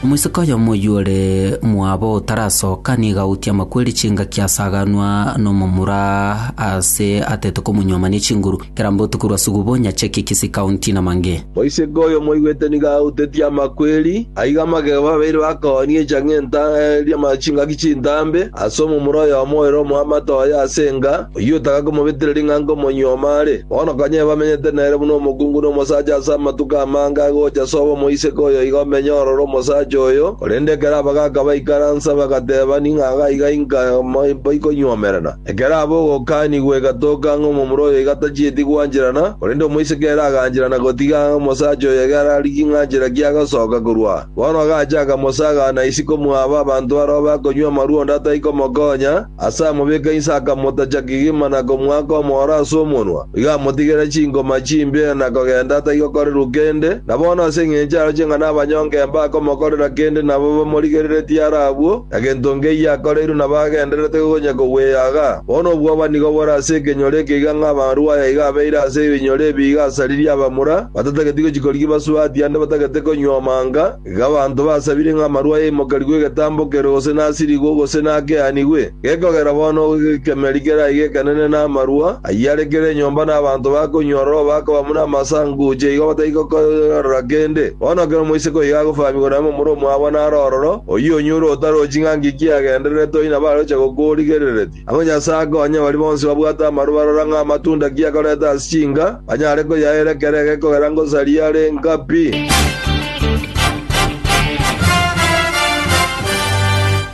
Omoiseke oyomo oyio ore omwabo otarasoka nigo agoutia amakweri chingaki asaganwa nomomura ase atete komonyuoma ne chinguru kera botuko rwa sugubo nyache ki Kisii County namange. Moiseke oyo moigwete nigo agoutetie amakweri, aiga amagego babere bakoonie chang'enta eria chingaki chintambe ase omomura oyomo ore omoamate oye ase enga, Oyio otagakomobetera ring'ango omonyuoma are, bono konya ebamenyete nere buna omokungu na omosacha ase amatuko amange agocha ase obo moiseke oyo iga omenye ororo omosacha oyo, korende ekero abagaaka baikaransa bagateba ning'a agaiga inka baikonyuomerana. Ekero aba ogokaanigwa egatoka ng'a omomura oyo iga tachieti gwancherana, korende omoiseke ere agancherana gotiga ng'a omosacha oyo iga ararigie ng'a nchera ki agasoka korwa. Bono agacha akamosaga na isiko mwaba abanto barabwo bakonywa amarwa onde atai komokonya, Ase amobika inse akamotacha kegima na komoaka omooro ase omonwa, igo amotigere chingoma chimbe na kogenda atagokorerwa kende, na bono ase engencho aro ching'a nabanyonga mbakomokorera kende nabo bamorigereretie are abwo, na gento nkeyio akoreirwe nabo agendererete gonya kogweaga. Bono obwoba nigo bore ase ekenyoro eke iga ng'a amarwaya iga abeire ase ebinyoro ebi iga asaririe abamura, batatageti gochia korigia basubati ande batagete konywa omanga, Iga abanto basabire ng'a amarua aimokerigwe egetambo kere gose nasirigwe gose nakeanigwe, gekogera bono gekemeri keraige ekenene namarua ayio are kera enyomba na abanto bakonywa ororo bakaba buna amase anguche igo batari gokorora kende. Bono ekero moiseke oiga agofaamigwa na momura omwabo naro ororo, oyio onyure otarochi ng'a nki kiagendererete oina baroche gokorigerereria. Agwo Nyasae akonye baria bonsi babwate amaru barora ng'a amatunda ki akoreta ase chinka, banyare koyaera ekero eke kogera ngosari yare nka pi.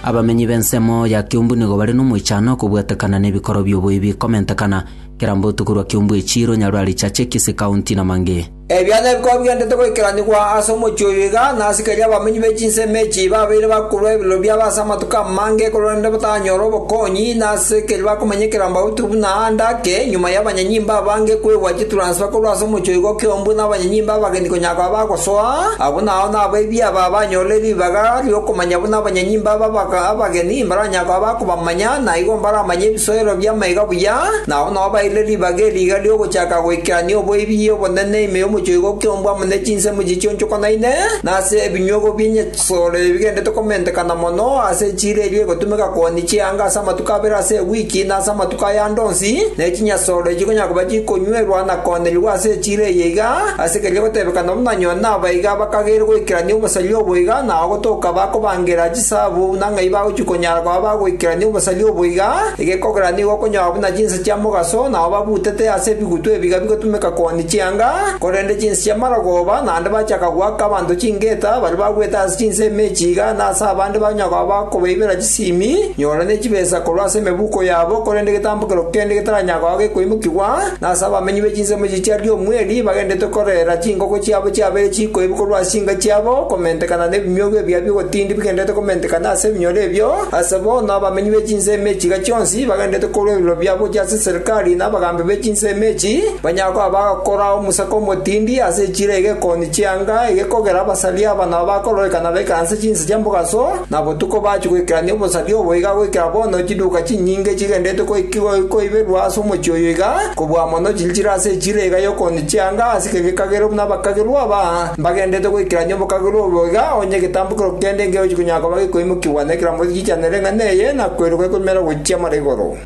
Abamenyi b'ensemo ya Kiumbu nigo bare nomoichano okobwatekana nebikoro bi'oboibi komentekana, kera mbotuko rwa Kiumbu echiiro, Nyaruari, Chache, Kisii County na Mange. Ebiaancha bikaba bigenderete goikeranigwa ase omochie oyo iga, na asikaria abamenyi be chinsemo echi babeire bakorua ebirero biabo ase amatuko amange ekorwa rende batanyore obokonyi, na ase keria bakomenya ekerogo bautwe buna aande ake, nyuma y'abanyanyimba abange kwegwa chitransfer korwa ase omochie oyo iga okeombwe n'abanyanyimba abageni konya koba bagosoa, abwo nao nabo ebiaba abanyorire ribaga ri'okomanya buna abanyanyimba aba abageni mbaranyare koba bakobamanya. Manya naigo mbaramanye ebisoero bi'amaiga buya, na ao nao baeire ribaga eriiga ri'ogochaka goikerania oboibi obonene ime y'omochoigo ki'ombu amo ne chinsemo chichionchokanaine, na ase ebinyuogo bi'enyasore ebigendete komentekana mono, ase echiira eria egotumeka kooni chianga ase amatuko abere ase ewiki na ase amatuko aya ande onsi, ne chinyasore chikonyara koba chikonywerwa na koonerigwa ase echiira eye iga, ase keria gotebekana buna nyoo nabaiga bakageire goikerania obosaria obo iga, nao gotoka bakobangera Ase abwo, buna ng'ai bagochia konyara koba bagoikerania obosaria obo iga? Egekogera nigo okonyora buna chinsa chia mogaso nao babutete ase ebigutu ebiga bigotumeka koonia chianga, korende chinsa chia marogoba naende bachaka goaka abanto chingeta baria bagwete ase chinsa emechi iga, na ase abande banyara koba bakobaibera chisimi, nyora ne chibesa korwa ase emebuko yabo, korende egetambo kerokio kende getaranyara koba gekoimokigwa. na ase abamenyi be chinsemo echi chiaria omweri bagenderete korera chinkoko chiabo chiabere chikoibu korwa ase chinka chiabo, komentekana nebimiogo ebia bi'ogotindi bigendererete komentekana ase ebinyoro ebio, ase bono abamenyi be chinsemo echi iga chionsi bagendererete korua ebiroro biabo gochia ase serikari na abagambi be chinsemo echi, banyare koba bagakora omosaka omotindi ase echiro eye gekoonia chianga eye kogera abasaria aba nabo bakororekana baikaranse chinse chia mogaso, Na botuko bachia goikerania obosaria obo iga goikera bono chiduka chinyinge chigenderete goikigwa koiberwa ase omochie oyo iga, kobua mono chinchire ase echira iga y'okooni chianga ase ekeegwa ekagere buna abakagerwa aba mbagenderete goikerania obokagerwa obo iga, onye egetambo kerokio kende nkegochia konyara koba gekoimokigwa na ekerango gechichanere ng'a neye, na koiroka ekoimera gochia mara igoro.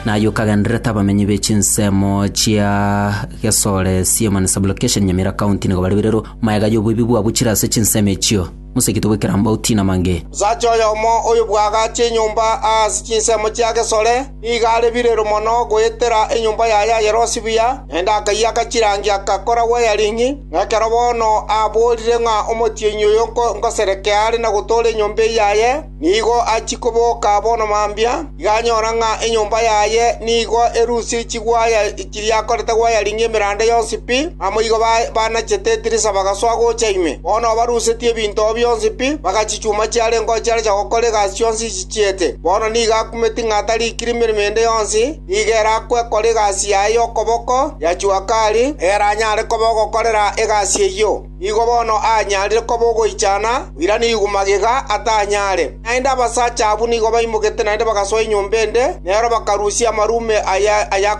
Naye okagendererete abamenyi be chinsemo chia. Gesore, Siema na Sublocation Nyamira County nigo bare birero, mayega y'oboibi bwabo chire ase chinsemo echio. Moseketie goikera Mbauti na Mange. Sacha oyomo oyo bwagacha enyomba aase chinsemo chia Gesore, nigo are birero mono goetera enyomba yaye ayerosie buya, naende akayiaka chirangi agakora wiring, na ekero bono aaboorire ng'a omotienyi oyo nkoserekee are na gotoora enyomba eyaye, Nigo achia koboka bono mambia, iga anyora ng'a enyomba yaye nigo erusie chigwaya chiria akorete gwayaringia emeranda yonsi pi. Naboigo banachete etirisa bagasoa gocha ime. Bono barusetie ebinto oo bionsi pi, bagachichuma chiare ngochiarecha gokora egasi yonsi chichiete. Bono nigo akumeti ng'a tarikire emeremo ende yonsi, nigo ere akwekora egasi yaye y'okoboko ya Chuakari, ere anyare koba ogokorera egasi eyio. Nigo bono aanyarire koba ogoichana, oirane igwa magega atanyare. Naende abasacha abwo nigo baimogete naende bagasoa enyomba ende, nero bakarusia amarume aya ayakonye.